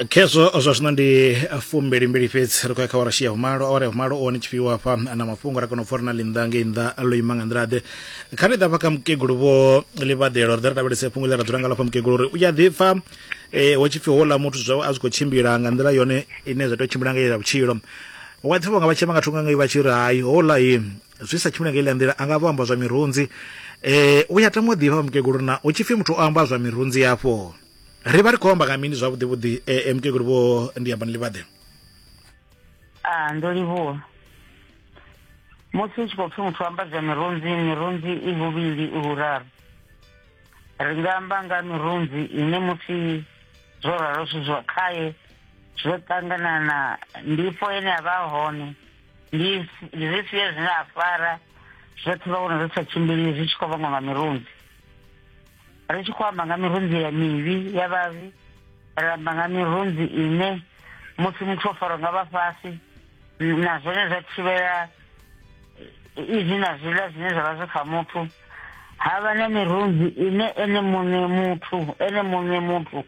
khezwo zwa zwino ndi fumbili mbili fhedzi ri khou ya kha wara shia humalo awara ya humalo one tshifhiwa hafha na mafhungo ra kona u pfa uri na ḽinnḓa ngei nnḓa ḽo ima nga nḓila ḓe kha ri ḓa fha kha mukegulu vho ḽivhadela ri ḓa ri lavhelese fhungo ḽe ra dzula nga lafha mukegulu uri u ya ḓipfa eh, ho tshipfi houḽa muthu zwawe a zwi khou tshimbila nga nḓila yone ine zwa tea u tshimbila nga ya vhutshilo wa ḓipfa vhanga vha tshema nga thungo ngei vha tshi ri hai houḽa hi zwi sa tshimile nga iḽa nḓila a nga vho amba zwa mirunzi eh u ya tama u ḓivha vha mukegulu na u tshipfi muthu o amba zwa mirunzi yafho ri vha ri khou amba nga mini zwavhuḓi vhuḓi eh, eh mukegulu vho ndi amba ni livhaḓe a ah, ndo livhuwa musi u tshi khou pfi muthu amba zwa mirunzi mirunzi i vhuvhili i vhuraru ri nga amba nga mirunzi ine musi zwo ralo zwi zwa khaye zwo ṱangana na ndifho ene a vha hone this this year zvine afara zvothi vaona zvisachimbirire zvichikovanga nga mirunzi richikwamba nga mirunzi ya mivi ya vavi ramba nga mirunzi ine musi muthu ofaro nga vafasi na zwone zwa thivhela izwi na zwiḽa zwine zwa vha zwi kha muthu ha vha na mirunzi ine ene muṋe muthu ene muṋe muthu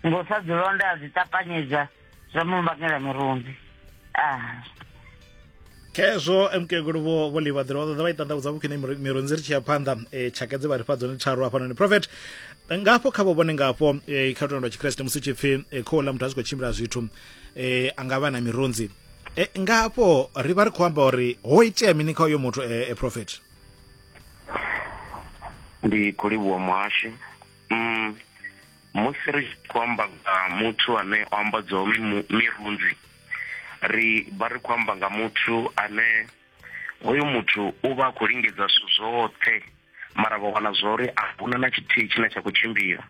ngo sa dzilonda a dzi ṱapanyedza zwa mu vhangela murunzi ah khezwo emukegulu vho vho livha ḓira vha ṱoḓa vha i ṱanḓavhudza vhukhwine mirunzi ri tshi ya phanḓa um e, tshaka dze vha ri fha dzone tharu hafhanoni prophet ngafho kha vho vhone ngafho um kha lutendo lwa tshikreste musi tshi pfi um khou ḽa muthu a zwi khou tshimbila zwithu um a nga vha na mirunzi um ngafho ri vha ri khou amba uri ho itea mini kha uyo muthu um prophet ndi khou livhuwa muhasho um musi ri tshi khou amba nga muthu ane o ambadzaho mirunzi ri vha ri khou amba nga muthu ane hoyo muthu u vha a khou lingedza zwithu zwoṱhe mara vha wana zwa uri a huna na tshithihi tshine tsha khou tshimbila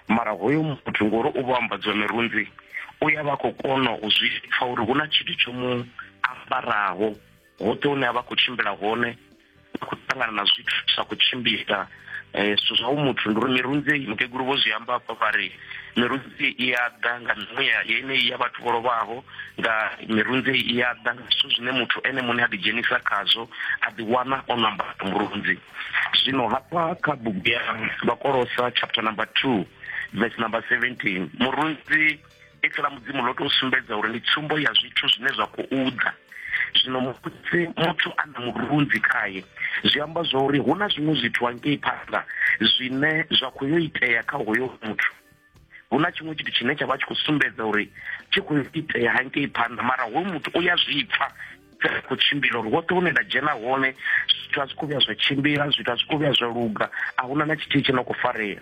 mara hoyo muthu ngori u vha ambadziwa mirunzi u ya vha khou kona u zwi pfa uri hu na tshithu tsho mu ambaraho hoṱhe hune a vha khou tshimbila hone a khou ṱangana na zwithu zwi sa khou tshimbila um eh, zwithu zwa u muthu ndi uri mirunzi mukegulu vho zwi amba hafha vha ri mirunzi i ya ḓa nga mimuya yeneyi ya vhathu vho lovhaho nga mirunzi i ya ḓa nga zwithu zwine muthu ene muṋe a ḓidzhenisa khazwo a ḓiwana o namba murunzi zwino hafha kha bugu ya vhakolosa chapter number two verse number seventeen murunzi ipfi ḽa mudzimu ḽo tou sumbedza uri ndi tsumbo ya zwithu zwine zwa khou ḓa zwino musi muthu a na murunzi khaye zwi amba zwa uri hu na zwiṅwe zwithu hangei phanḓa zwine zwa khou yo itea kha hoyo muthu hu na tshiṅwe tshithu tshine tsha vha tshi khou sumbedza uri tshi khou itea hangei phanḓa mara hoyu muthu u ya zwi pfa ri khou tshimbila uri woṱhe hune nda dzhena hone zwithu a zwi khou vhuya zwa tshimbila zwithu a zwi khou vhuya zwa luga a huna na tshithihi tshi no khou farea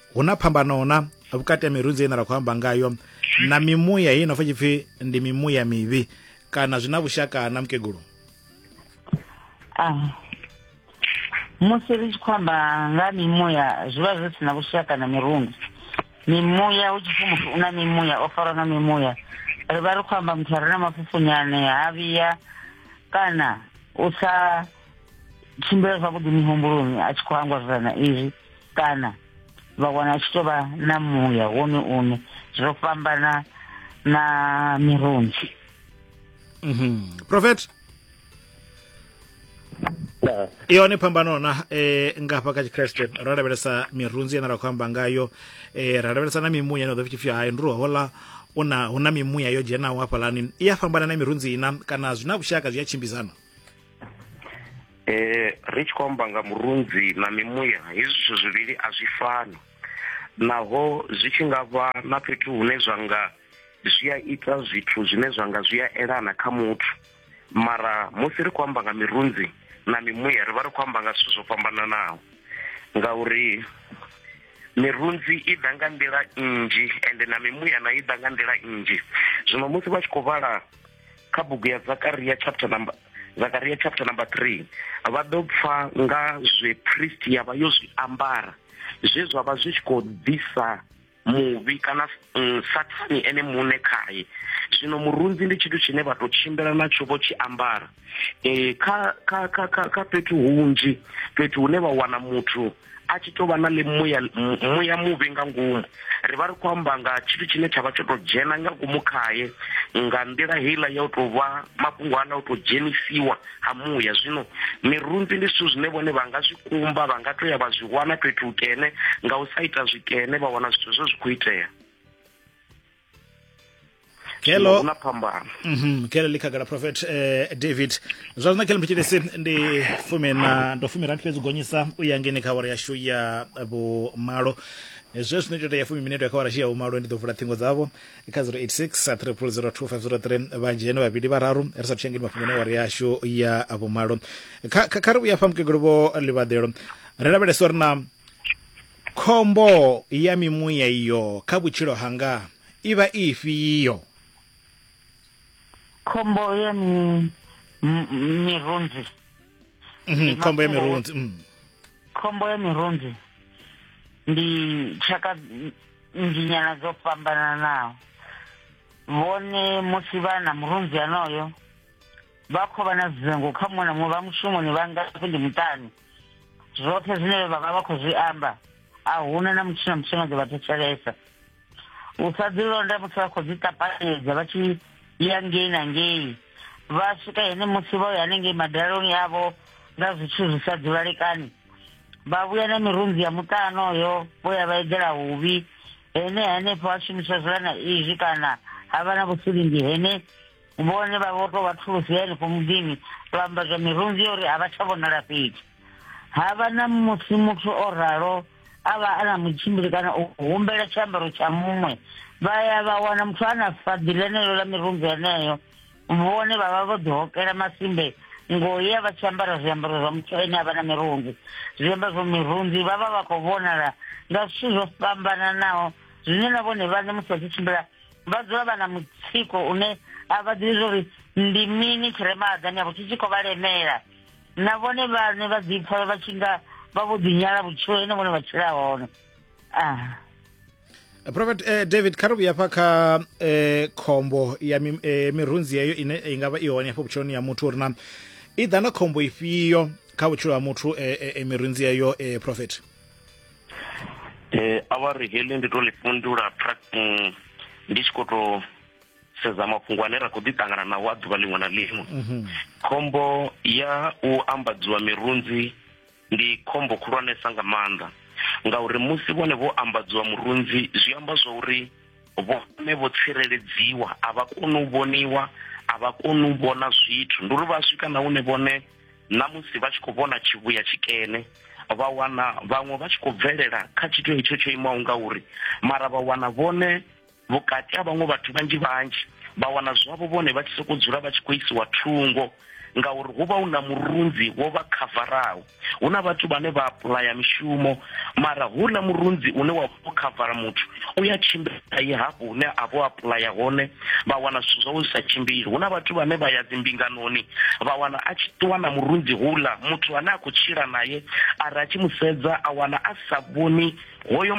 hu na phambano na vhukati ha mirunzi ine ra khou amba ngayo na mimuya hei nopfa tshipfi ndi mimuya mivhi kana zwi na vhushaka na mukegulu ah, musi ri tshi khou amba nga mimuya zwi vha zwi si na vhushaka na mirunzi mimuya hu tshipfi muthu u na mimuya o farwa nga mimuya ri vha ri khou amba muthu a re na mafhufhunyane ha vhiya kana u sa tshimbila zwavhuḓi mihumbuloni a tshi khou hangwa zwirana izwi kana vha wana tshi tovha na muya wone une zwo fhambana na mirunzi mm -hmm. prophet i hone phambano na eh, nga hafha kha tshikreste ra lavhelesa mirunzi ine ra khou amba ngayo eh, ra lavhelesa na mimuya ine ḓo pfhi hai ndi ri hola una huna mimuya yo dzhenaho hafhalani i ya fhambana na mirunzi ina kana zwi na vhushaka zwi a tshimbidzana eh ri tshi khou amba nga murunzi na mimuya hezwi zwithu zwivhili a zwi fani naho zwi tshi nga vha na fhethu hune zwa nga zwi a ita zwithu zwine zwa nga zwi a elana kha muthu mara musi ri khou amba nga mirunzi na mimuya ri vha ri khou amba nga zwithu zwo fhambananaho ngauri mirunzi i ḓa nga nḓila nnzhi ende na mimuya na i ḓa nga nḓila nnzhi zwino musi vha tshi khou vhala kha bugu ya zakaria chapter number zakaria chapter number 3 vha ḓo pfa nga zwe priest ya vha yo zwi ambara zwe zwa vha zwi tshi khou ḓisa muvhi kana mm, sathani ene muṋe khaye zwino murunzi ndi tshithu tshine vha tou tshimbila natsho vho tshi ambara um kha kha kha kha kha fhethu hunzhi fhethu hune vha wana muthu a tshi tou vha na ḽi muya muya muvhi nga ngomu ri vha ri khou amba nga tshithu tshine tsha vha tsho tou dzhena nga ngomu khaye nga nḓila heiḽa ya u tou vha mafhungo aḽa u tou dzhenisiwa ha muya zwino mirunzi ndi zwithu zwine vhone vha nga zwi kumba vha nga tou ya vha zwi wana fhethu hukene nga u sa ita zwikene vha wana zwithu zwo zwi khou itea kelo huna phambano Mhm, kelo ḽi khagala prophet eh, david zwa zwino kelo mphitshilisi ndi fumi na ndo fumi rati fhedzi u gonyisa u ya ngeni kha awara yashu ya vhumalo Eh, zwe zwino ita ya fumi minete ya kha awara yashu ya vhumalo ndi ḓo vula ṱhingo dzavho kha 086 3002503 vhanzhi hene vhavhili vhararu ri sa thushangeni mafhungo na awara yashu ya vhumalo kha kha- kha ri vhuya fha mukegulu vho ḽivhaḓelo ri lavhelesa uri na Khombo ya mimuya iyo kha vhutshilo hanga i vha i ifhio? Khombo ya mi, mirunzi. Mm, khombo ya mirunzi. Mm. Khombo ya mirunzi ndi tshaka nzhinyana dzo fhambananaho vhone musi vha na murunzi anoyo vha khou vha na dzingu kha muṅwe na muṅwe vha mushumoni vha ngafhi ndi muṱani zwoṱhe zwine vha vha vha khou zwi amba a huna na mutshina mutshina ḓo vha thetshelesa u sa ḓilonda musi vha khou ḓi ṱapanyedza vha tshi ya ngei na ngei vha swika hene musi vha ya hanengei madaloni avho nga zwithu zwi sa ḓivhalekani vha vhuya na mirunzi ya muṱano yo vho ya vha eḓela huvhi hene henefho ha shumiswa zwilana izwi kana ha vha na vhusilingi hene vhone vha vho tou vha thulusi ya henefho muḓini vha amba zwa mirunzi yo uri a vha tsha vhonala fhethu ha vha na musi muthu o ralo a vha a na mutshimbili kana u humbela tshiambaro tsha muṅwe vha ya vha wana muthu a na faḓi ḽeneḽo ḽa mirunzi yeneyo vhone vha vha vho ḓihokela masimbe ngoya vha tshi ambara zwiambaro zwa muthu ene a vha na mirunzi zwiambaro zwa mirunzi vha vha vha khou vhonala nga zwithu zwo fhambananaho zwine na vhone vhane musi vha tshi tshimbila vha dzula vha na mutsiko une a vha ḓivhi zwa uri ndi mini tshi re mahaḓani avho tshi tshi khou vha lemela na vhone vhane vha ḓipfa vha tshi nga vha vho ḓinyala vhutshilo ine vhone vha tshila hone ah. Eh, prophet eh, david kha ri vhuya fha kha eh, khombo ya mi, eh, mirunzi yeyo ine i nga vha i hone hafho vhutshiloni ya muthu uri na i ḓa na khombo ifhio kha vhutshilo ha muthu eh, eh, eh mirunzi yeyo eh, prophet eh awari heḽi ndi to ḽi fhundula tracking ndi tshi khou to sedza mafhungo ane ra khou ḓi ṱangana nawo a ḓuvha ḽiṅwe na ḽiṅwe mhm. khombo ya u ambadziwa mirunzi ndi khombo khulwanesa nga maanḓa ngauri musi vhone vho ambadziwa murunzi zwi amba zwa uri vhone vho tsireledziwa a vha koni u vhoniwa a vha koni u vhona zwithu ndi uri vha swika na hune vhone na musi vha tshi khou vhona tshivhuya tshikene vha wana vhaṅwe vha tshi khou bvelela kha tshithu hetsho tsho imaho nga uri mara vha wana vhone vhukati ha vhaṅwe vhathu vhanzhi vhanzhi vha wana zwavho vhone vha tshi sokou dzula vha tshi khou isiwa thungo ngauri hu vha hu na murunzi wo vha khavaraho hu na vhathu vhane vha apulaya mishumo mara hu na murunzi une wa u khavara muthu u ya tshimbila ye hafho hune a vho apulaya hone vha wana zwithu zwawe zwi sa tshimbili hu na vhathu vhane vha ya dzimbinganoni vha wana a tshi ṱuwa na murunzi hula muthu ane a khou tshila naye ari a tshi mu sedza a wana a sa vhoni hoyo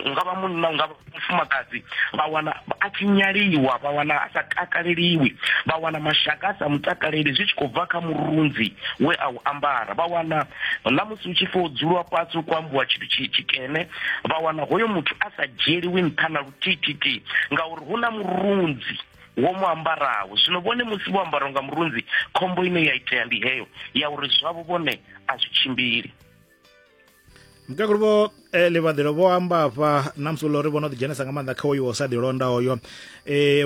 nga vha munna nga mufumakadzi vha wana a tshi nyaliwa vha wana a sa takaleliwi vha wana mashaka a sa mutakaleli zwi tshi khou bva kha murunzi we a u ambara vha wana na musi hu tshi fo dzulwa fhasi u kwambuwa tshithu tshi tshikene vha wana hoyo muthu a sa dzhieliwi nṱha na luthihi ngauri hu na murunzi wo mu ambaraho zwino vhone musi vho ambaraho nga murunzi khombo ine ya itea ndi heyo ya uri zwavho vhone a zwi tshimbili mukegulu vho eh, ḽivhaḓelo vho amba afha na musi uri vho no ḓidzhenisa nga maanḓa kha oyo sa ḓilonda oyo um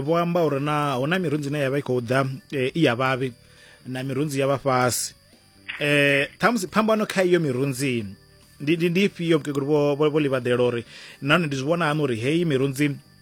vho amba uri na hu na mirunzi ine ya vha i khou ḓa eh, i ya vhavhi na mirunzi ya vha fhasi eh ṱhamusi phambano kha iyo mirunzi ndi ndi ndi ifhio mukegulu vho vho vho livhaḓela uri nahone ndi zwi vhona hani uri heyi mirunzi